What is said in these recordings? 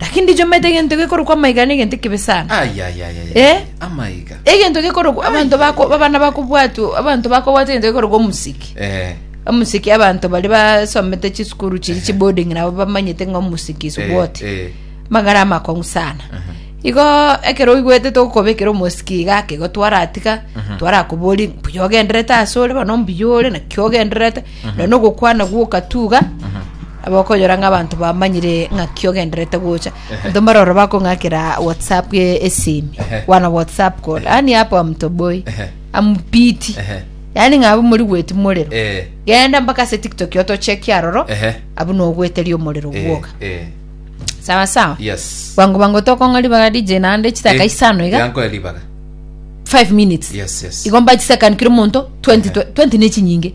Lakini ndichomete egento gekorokwa amaiga na egento ekebe sana. Ayayayaya. Eh? Amaiga. Egento gekorokwa abanto bako abana bakobwatwa abanto bakobwata egento gekorokwa omusiki. Eh. Omusiki abanto bari basomete chisukuru chiri chiboarding nabo bamanyete ng'a omusiki is Eh, what. eh. Magara amakong'u sana. Aha. Igo ekero oigwete togokobekera omosiki iga ake igo twaratiga twarakobori mbuya ogenderete ase ore bono mbuya ore naki ogenderete na nogokwana gw'okatuga abakonyora ng'a abanto bamanyire ng'aki ogenderete gocha abanto mbare oro bakong'akera whatsapp e- esimi wana whatsapp call yani hapa mtoboi amupiti yani ng'a abwo mori gweti morero Eh. genda mpaka ase tiktok otocheki aroro Ehe. abu nogweteria omorero Eh, gwoka eh, sawa sawa yes bwango bwango tokong'a ribaga dj naende chitaka Eh, isano iga yanko ya ribaga 5 minutes yes yes igomba chisakan kira omonto 20 20 nechinyinge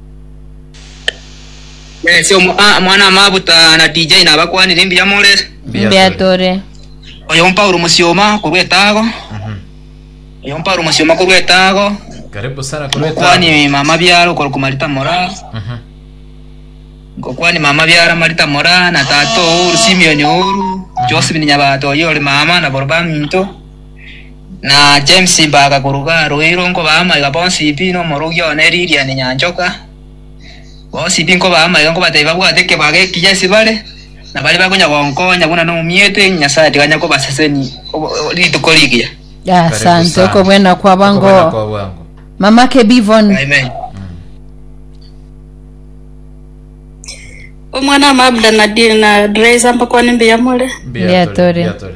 Yes, omo- ah, mwana amabuta na DJ nabakwanire mbuya morere. Mbuya tore. Oyo Paulo Musioma korwa etago. Oyo Paulo Musioma korwa etago. Karibu sana kwa leta. Mukwani mama byaro korwa kumarita mora. Mhm. Ngokwani mama byara marita mora na tato oru Simeon oru. Joseph ni nyabato oyo ori mama na boro baminto. Na James mbaga koruga roiru nkobaa amaiga bonsi pi, na omorogia one Lilian Nyanchoka, bonsi pi nkobaa amaiga nkobatebia babwate ekebago ekiya ase bare, na baria bakonya gonkonya buna nomomieto, erio Nyasae tikanya kobasesenia obo- o- rituko rigiya. Asante okobwena kwa bwango. Okobwena kwa bwango. Mama Kebivon. Amen. omwana mabda na di- na dresa mpakwane mbuya more Mbuya Mbuya tore, tore. mbuya tore.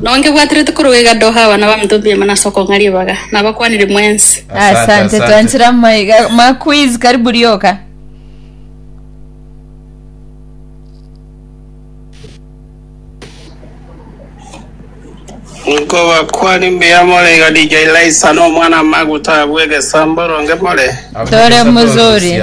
Nao nkebwaterete korwa iga Doha abana b'abanto mbiaima nase okong'a ribaga, nabakwanire mwensi. Asante, twanchire amaiga ma quiz karibu rioka. Nkobakwani mbuya more iga DJ Laisa na omwana amaguta abwe egesambo ronge more. Tore mozuri.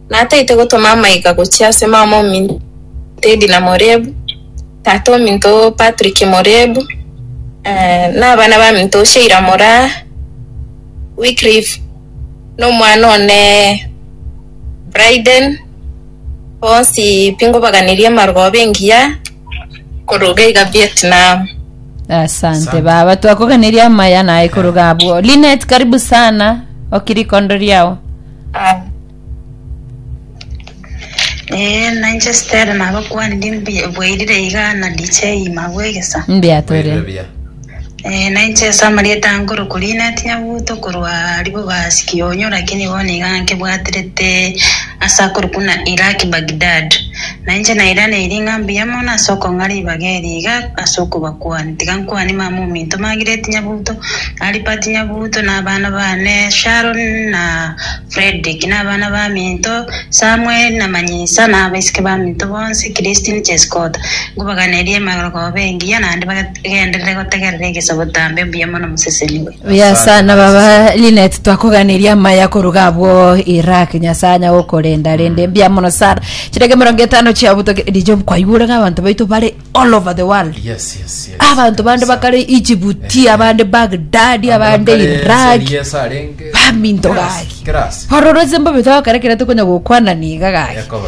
Nataete gotoma amaiga gochia ase mama ominto Tedina Morebu, tata ominto Patrick Morebu, eh, na abana baminto Sheila Moraa, Wycliffe, na omwana one Bryden, bonsi pi ngobaganirie amargooba engiya koruga iga Vietnam. Asante baba, twakoganeria amaya naye koruga abwo. Linet, karibu sana okirikondo riao. Ee, nainche Stella nabakwani ndi mbi- bwairire iga na DJ Magwe egesa. Mbuya tore. Bwairire buya. Ee, nainche ase amarieta ange orokorina tinyabuto korwa ribo basi kionyo lakini bono iga nkebwaterete ase akorokuna Iraq Baghdad. Na inche nairaneiri ng'a mbuya mono ase okong'a ribaga eri iga ase okobakuani, tiga nkuani mama ominto Margaret Nyabuto, Albert Nyabuto, na abana baane Sharon na Fredrick, na abana baminto Samuel na Manyisa, na abaiseke baminto bonsi, Christine Chesikota. Nkobaganeria emerogoba engiya, naende bagenderere gotegerera egesabo tambe. Mbuya mono moseseniwe. Yasa na baba Linet twakoganiria amaya koruga abwo Iraq nyasanya okorenda rende mbia mono sana chirege mirongo etano chia butoke DJ kwaigure nga abantu baitu bari all over the world yes yes yes abantu bande kabisa. bakare Egypt Eh. abande Baghdad abande bakare Iraq Syria sarenge. baminto Kiras, gaki kiras. ororo zimbo bitokare kira tukonya gokwana niga gaki Yakobo.